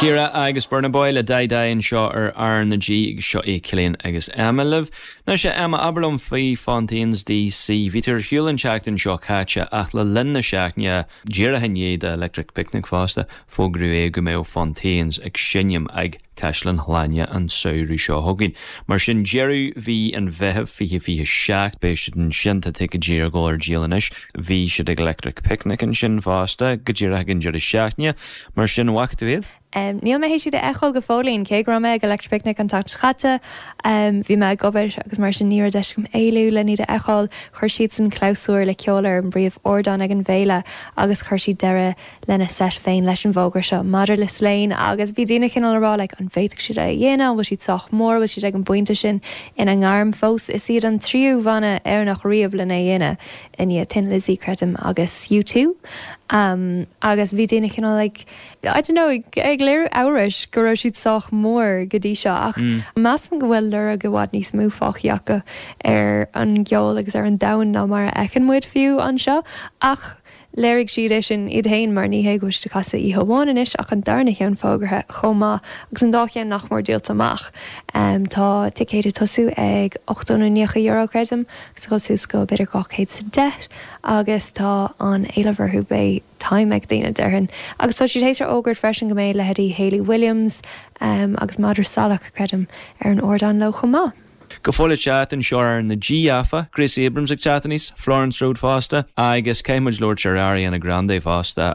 Shakira agus Burna Boy le Dai Dai anseo ar R na G. Seo é Cillian agus Emma libh. Anois a Emma, abair liom faoi Fontaines DC. Bhí tú ar shiúl an tseachtain seo caite ach le linn na seachtaine díreach i ndiaidh do Electric Picnic fosta, fógraíodh é go mbeadh Fontaines ag seinm ag. Caisleán Shláine an samhradh seo chugainn. Mar sin, deireadh mhí an Mheithimh 2027, beidh siad ansin. Tá ticéidí ar a gcoinne ar díol anois. Bhí siad ag Electric Picnic ansin fosta, go díreach ag an deireadh seachtaine, mar sin an bhfaca tú iad? Níl mé théis iad a fheiceáil go fóillín, cé go raibh mé ag Electric Picnic an tseachtain seo caite, bhí mé ag obair agus mar sin ní raibh deis agam éalú len iad a fheiceáil. Chuir siadsan clabhsúr le ceol ar an bpríomhardán ag an bhféile agus chuir siad deireadh lena seit féin leis an bhfógra seo maidir le Slane agus bhí daoine cineál a rá like an bhféadfadh siad é a dhéanamh, an bhfuil siad sách mór, an bhfuil siad ag an bpointe sin ina ngairm fós? Is iad an tríú bhanna Éireannach riamh len é dhéanamh i ndiaidh Thin Lizzy, creidim, agus U2. Agus bhí daoine cineál like, I don't know, ag léiriú amhrais go raibh siad sách mór go dtí seo ach measaim go bhfuil lorg i bhfad níos mó fágthaí acu ar an gceol agus ar an domhan ná mar a fheiceann muid fiú anseo ach Léirigh siad é sin iad féin mar ní hé go bhfuil siad ag casadh oíche amháin anois ach an darna cheann fógartha chomh maith agus an dá cheann nach mór díolta amach. Tá ticéid ag tosú ag ochtó nó naocha euro, creidim, agus ag dul suas go b'fhéidir dhá chéad is a deich agus tá an-éileamh orthu. Beidh time ag daoine, déarfainn. Agus tá siad théis a fhógairt freisin go mbeidh leithéidí Hayley Williams agus Madra Salach, creidim, ar an ardán leo chomh maith. go fóill le teacht anseo ar R na G áfach, Gracie Abrams ag teacht aníos, Florence Road fosta agus caithfidh muid labhairt ar Ariana Grande fosta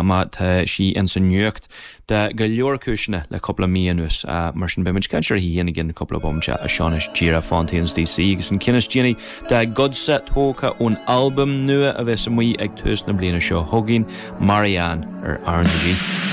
mar tá sí ins an nuacht do go leor cúiseanna le cúpla mí anuas. Mar sin beidh muid ag caint uirthi féin i gceann cúpla bomaite. Ach seo anois díreach Fontaines DC agus an ceann is déanaí dá gcuidsean tógtha ón albam nua a bheas amuigh ag tús na bliana seo chugainn, Marianne ar R na G.